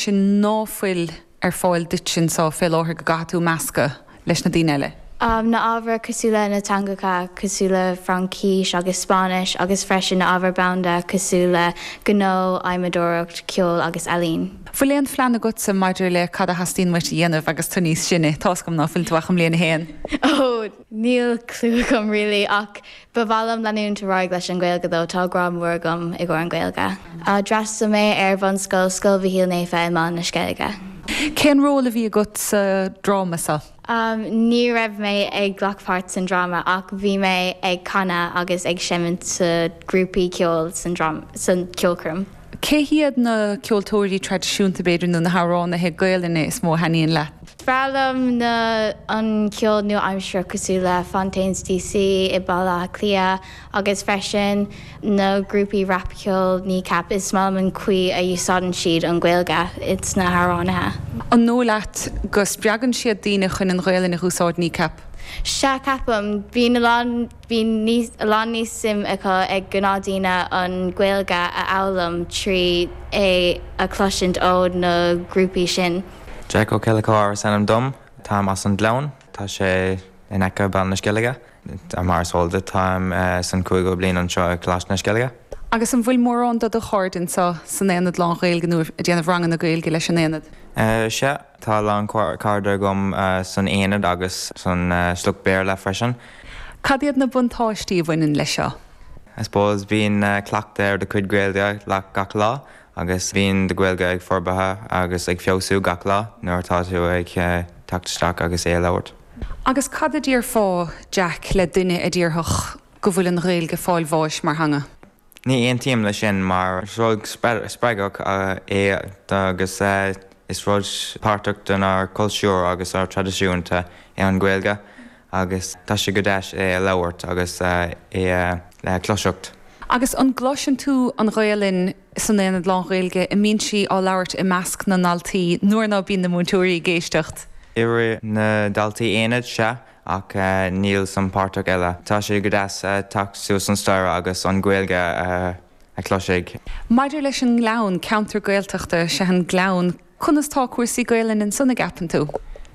sin ná fuil ar fáil duit sin sa fé láthair go gcaithfidh tú meascadh leis na daoine eile. Am na ábhair cosúil le na teangacha cosúil le Fraincis agus Spáinnis agus freisin na ábhair banda cosúil le gnó, adhmadóireacht, ceol agus ealaín. Fuil aon phlean agatsa maidir le cad a theastaíonn uait a dhéanamh agus tú níos sine? Tá's agam ná fuil tú ach i mbliain a haon. Oh, níl clue agam really ach Ba mhaith liom leanúint ar aghaidh leis an Gaeilge dó, tá grá mór agam i gcomhair an Gaeilge. D'fhreastal mé ar bhunscoil Scoil Mhichíl Naofa i mBaile na Sceilge. Cén ról a bhí agat sa dráma seo? Ní raibh mé ag glacadh páirt san dráma ach bhí mé ag canadh agus ag seimint sa grúpaí ceoil san ceolchoirm. Cé hiad na ceoltóirí traidisiúnta, b'fhéidir, nó na hamhránaithe Gaelainne is mó a thaitníonn leat? Is breá liom na, an ceol nua-aimseartha cosúil le Fontaines DC i Baile Átha Cliath agus freisin na grúpaí rapceoil Kneecap is maith liom an caoi a usáideann siad an Ghaeilge ins na hamhránaithe. An dóigh leat go spreagann siad daoine chun an Ghaelainn a húsáid Kneecap? Sea, ceapaim. Bíonn a lán. Bíonn a lán níos suim acu ag gnáthdaoine an Ghaeilge a fhoghlaim trí é a chloisint ó na grúpaí sin. Jake Ó Ceallacháir is ainm dom. Táim as an Gleann. Tá sé in aice Baile na Sceilge. Mar is eol duit táim san cúigeadh bliain anseo i Coláiste na Sceilge. Agus an bhfuil mórán de do chairde anseo san Aonad Lán Ghaeilge nó ag déanamh ranganna Gaeilge leis an Aonad? Sea, tá a lán cairde agam san Aonad agus san sruth Béarla freisin. Cad iad na buntáistí a bhaineann leis seo? I suppose bíonn cleachtadh ar do chuid Gaeilge leat gach lá agus bíonn do Gaeilge ag forbartha agus ag feabhsú gach lá nuair atá tú ag teacht isteach agus é a labhairt. Agus cad a déarfá, Jake, le duine a déarfadh go bhfuil an Ghaeilge ag fáil bháis mar theanga? Ní aontaím leis sin mar is rud spreagach é agus is rud páirteach denár cultúr agus ár traidisiúnta é an Ghaeilge agus tá sé go deas é a labhairt agus é a cloiseacht. Agus an gcloiseann tú an Ghaolainn san Aonad Lán-Ghaeilge an mbíonn sí á labhairt i measc na ndaltaí nuair ná bíonn na múinteoirí ag éisteacht? Idir na daltaí aonaid, sea. Ach níl san páirteach eile. Tá sé go deas teacht suas an staire agus an Gaeilge a chloisint. Maidir leis an ngleann ceantar Gaeltachta is ea an gleann, conas tá cúrsaí Gaelainne ansan an gceapann tú?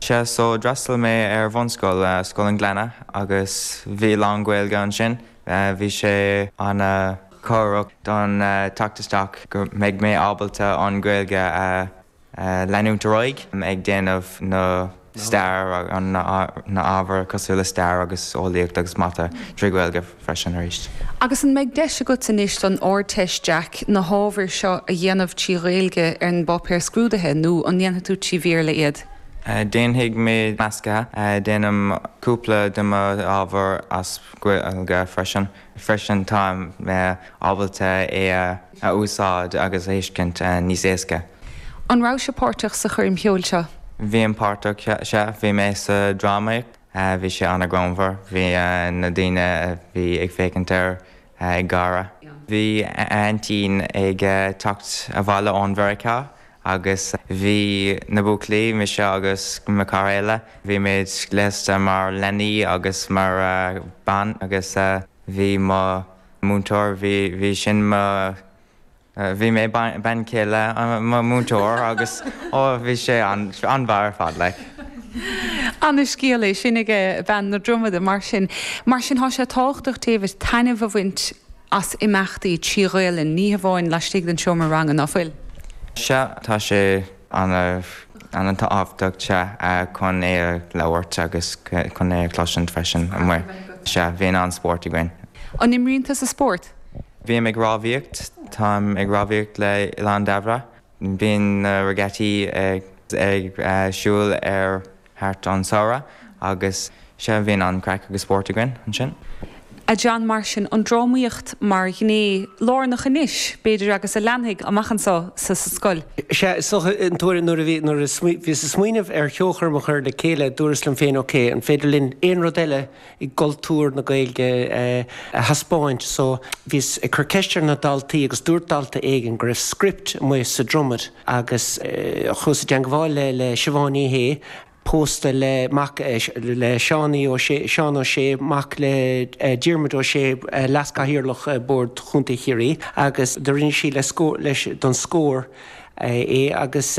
Sea, so d'fhreastal mé ar bhunscoil, Scoil an Ghleanna, agus bhí lán-Ghaeilge ansin. Bhí sé ana cabhrach don teacht isteach go mbeidh mé ábalta an Ghaeilge a leanúint ar aghaidh ag déanamh na stair, na ábhar cosúil le stair agus eolaíocht agus mata trí Ghaeilge freisin arís. Agus an mbeidh deis agat anois don Ardteist, Jack, na hábhair seo a dhéanamh trí Ghaeilge ar an bpáipéar scrúdaithe nó an ndéanfaidh tú trí Bhéarla iad? Déanfaidh mé measctha. Déanaim cúpla de mo ábhair as Gaeilge freisin. Freisin táim ábalta é a úsáid agus a thuiscint níos éasca. An raibh sibh páirteach sa choirm cheoil seo? Bhínn páirteach, sea. Bhí mé sa drámaíocht. Bhí sé an-ghreannmhar. Bhí na daoine a bhí ag féachaint air ag gáire. Bhí aintín ag teacht abhaile ó Mheiriceá Agus bhí na buachaillí, mise agus mo chara eile, bhí muid gléasta mar leanaí agus mar bean agus bhí mo múinteoir, bhí, bhí sin mo, bhí mé bean chéile mo múinteoir agus ó bhí sé an-mhaith ar fad like. Ana scéal é sin ag Bean na Dromada mar sin, mar sin tá sé tábhachtach David taitneamh a bhaint as imeachtaí trí Ghaolainn, ní hamháin laistigh den seomra ranga, nach bhfuil. Sea, tá sé an-tábhachtach chun é a labhairt agus chun é a chloisint freisin amuigh. Sea, bhíonn an-spórt againn. An imríonn tusa spórt? Bím ag rámhaíocht. Táim ag rámhaíocht le Oileán Dairbhre. Bíonn na regattas ar siúl ar thart an samhradh agus sea bíonn an-chraic agus spórt againn ansin. A Sheáin, mar sin, an drámaíocht mar ghné lárnach anois, b'fhéidir, agus a leanfaidh amach anso sa scoil? Sea, is dócha, an t-uair, nuair a bhí, nuair a bhíos ag smaoineamh ar cheolchoirm a chur le chéile, dúras liom féin, OK, an féidir linn aon rud eile i gcultúr na Gaeilge a thaispeáint? So, bhíos ag cur ceiste ar na daltaí agus dúirt dalta éigin go raibh script amuigh sa Dromaid. agus chuas i dteagmháil le Siobhán Ní Shé, pósta le mac le Seánaí Ó Sé, Seán Ó Sé, mac le Diarmuid Ó Sé, leas-chathaoirleach Bord Chontae Chiarraí, agus do rinne sí leis don Scór é agus.